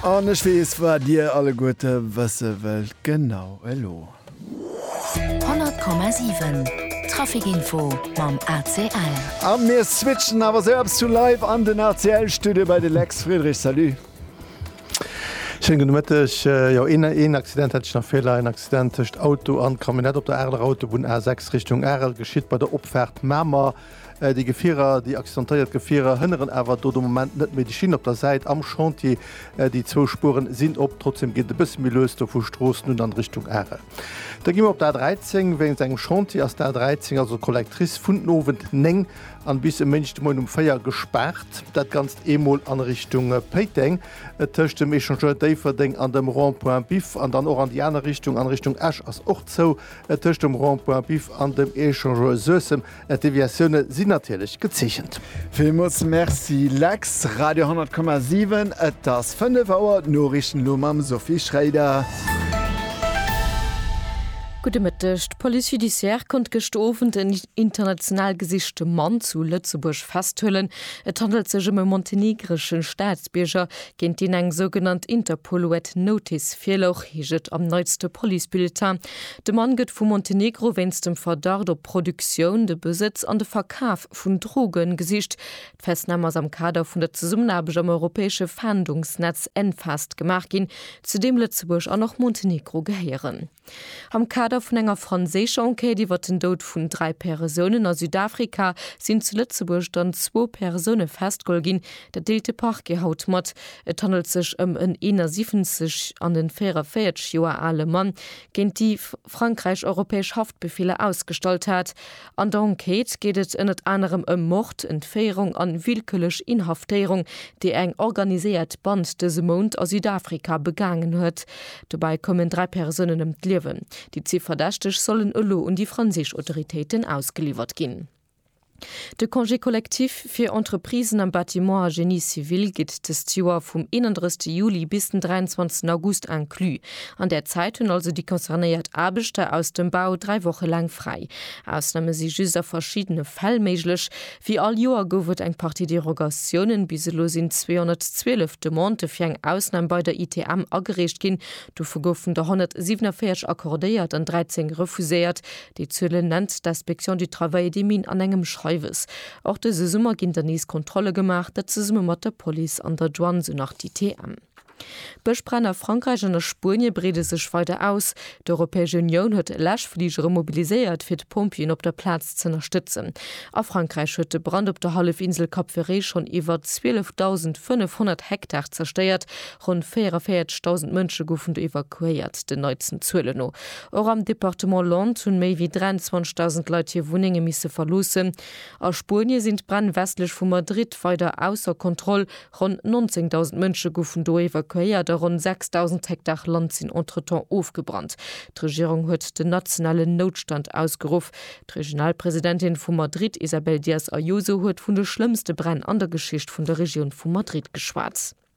An ech weess waat dir alleguerte wësse wëllt, genau elo. 100,7 Traficinfo mam ACL. A mir switchen awer sou eppes vu live an den ACL Studio bei de Lex Friedrich. Salut. Schéinen gudde Mëtteg. Jo, een Accident hätt ech nach virlei, en Accident tëscht Auto an Camionnette op der Areler Autobunn A6 Richtung Arel geschitt bei der Opfaart Mamer. Déi Gefierer, déi accidentéiert Gefierer hënneren awer do de Moment net méi. Déi Schinn op der Säit am Chantier, déi zwou Spueren sinn op. Trotzdeem geet et e bësse méi lues do vu Stroossen un an Richtung Are. Da gi mer op d'A 13. Wéinst engem Chantier ass d'A 13, also d'Collectrice, vun den Owend 9 an bis e Méindeg de Moien um 4 gespaart. Dat Ganzt eemol an Richtung Péiteng, tëscht dem Echangeur Déifferdeng an dem Rond-point Biff. An dann och an déi aner Richtung, an Richtung Esch, ass och zou, tëscht dem Rond-point Biff an dem Echangeur Suessem. D'Deviatioune sinn natierlech gezeechent. Villmools Merci Lex. Radio 10,7 Et ass 5 Auer, d'Noriichten elo mam Sophie Schréider. Gudde Mëtteg. D'Police judiciaire konnt gëscht Owend en international gesichte Mann zu Lëtzebuerg festhuelen. Et handelt sech ëm e montenegresche Staatsbierger, géint deen eng sougenannt Interpol-Red Notice virlouch, heescht et am neitste Police-Bulletin. De Mann gëtt vu Montenegro wéinst dem Verdacht op Produktioun, de Besëtz an de Verkaf vun Droge gesicht. D'Festnahm ass am Kader vun der Zesummenaarbecht am europäesche Fahndungsnetz Enfast gemaach ginn, zu deem Lëtzebuerg an och Montenegro gehéieren. Am Kader vun enger franséischer Enquête iwwer den Doud vun dräi Persounen a Südafrika sinn zu Lëtzebuerg dann zwou Persoune festgeholl ginn. Dat deelt de Parquet haut mat. Et handelt sech ëm en 71 an en 44 Joer ale Mann, géint dee Frankräich europäesch Haftbefeeler ausgestallt hat. An der Enquête geet et ënnert anerem ëm Mord, Entféierung an willkürlech Inhaftéierung, déi eng organiséiert Band dëse Mount a Südafrika begaangen huet. Dobäi koumen dräi Persounen ëm d'Liewen. Déi zwee Verdächteg sollen elo un déi franséisch Autoritéiten ausgeliwwert ginn. De Congé collectif fir Entreprisen am Bâtiment a Génie civil gitt dëst Joer vum 31 Juli bis den 23 August inclus. An där Zäit hunn also déi concernéiert Aarbechter aus dem Bau dräi Woche laang fräi. Ausname si just a verschiddene Fäll méiglech. Wéi all Joer gouf et eng Partie Derogatiounen. Bis elo sinn 212 Demandë fir eng Ausnam bei der ITM agereecht ginn. Dovu goufen der 147 accordéiert an 13 refuséiert. Déi Zuelen nennt d'Inspection du travail et des mines an engem Schreiwes. Och dëse Summer ginn der nees Kontrolle gemaach, dat zesumme mat der Police an der Douane, sou nach d'ITM. D'Bëschbränn a Frankräich an a Spuenie breede sech weider aus. D'Europäesch Unioun huet Läschfligere mobiliséiert, fir d'Pompjeeën op der Plaz z'ënnerstëtzen. A Frankräich huet de Brand op der Hallefinsel Cap Ferret schonn iwwer 12.500 Hektar zerstéiert. Ronn 44.000 Mënsche goufen do evakuéiert, den neitsten Zuelen no. Och am Departement Landes hunn méi wéi 23.000 Leit hir Wunnenge misse verloossen. A Spuenie sinn d'Bränn westlech vu Madrid weider ausser Kontroll, ronn 19.000 Mënsche goufen do evakuéiert a ronn 6.000 Hektar Land sinn entretemps ofgebrannt. D'Regierung huet den nationalen Noutstand ausgeruff. D'Regionalpresidentin vu Madrid, Isabel Díaz Ayuso, huet vun de schlëmmste Bränn an der Geschicht vun der Regioun vu Madrid geschwat.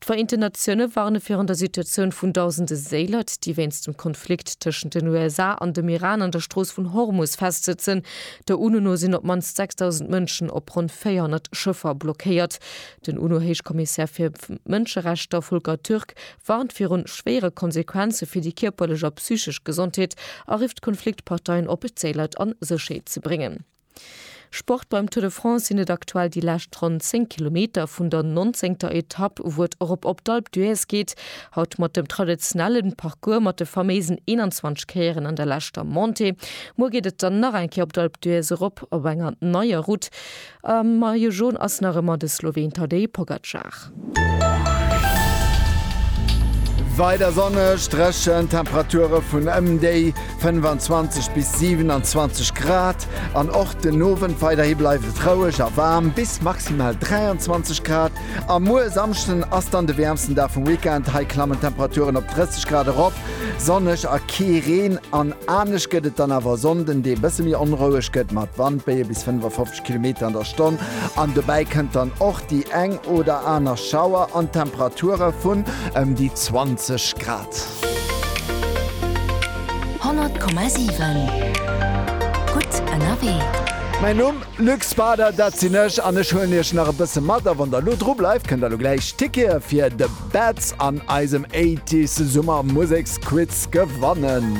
D'Vereenten Natioune warne virun der Situatioun vun dausende Séilert, déi wéinst dem Konflikt tëschent den USA an dem Iran an der Strooss vun Hormus festsëtzen. Der UNO no sinn op d'mannst 6.000 Mënschen op ronn 400 Schëffer blockéiert. Den UNO-Héichkommissär fir Mënscherechter Volker Türk warnt viru schwéiere Konsequenze fir déi kierperlech a psychesch Gesondheet a rifft d'Konfliktparteien op, d'Séilert a Sécherheet ze bréngen. Sport Beim Tour de France sinn et aktuell déi lescht ronn 10 Kilometer vun der nonzéngter Etapp, wou et erop op d'Alpe d'Huez geet. Haut mat dem traditionelle Parcours mat de faméisen 21 Kéieren an der leschter Montée. Muer geet et dann nach eng Kéier op d'Alpe d'Huez erop op enger neier Route. Am Maillot Jaune ass nach ëmmer de Sloween Tadej Pogacar. Weider sonneg, dréchen, Temperature vun ëm déi 25 bis 27 Grad an och den Owend. Weiderhi bleift et roueg a waarm bis maximal 23 Grad. A muer Samschden ass dann de wäermsten Dag vum Weekend. Hei klammen d'Temperaturen op 30 Grad erop, sonneg a kee Reen. An anescht gëtt et dann awer e Sonnden, dee bësse méi onroueg gëtt mat Wandbéie bis 55 Grad. Kilometer an der Stonn an dobäi kënnt dann och déi eng oder aner Schauer an Temperature vun ëm déi 20 Grad. 100,7 Gutt ënnerwee. Mäin Numm, Luc Spader, dat sinn ech an ech huelen iech nach e bësse mat a wann der elo dru bleift, kënnt der elo gläich Tickete fir de Betz an eisem 80s Summer Museksquiz gewannen.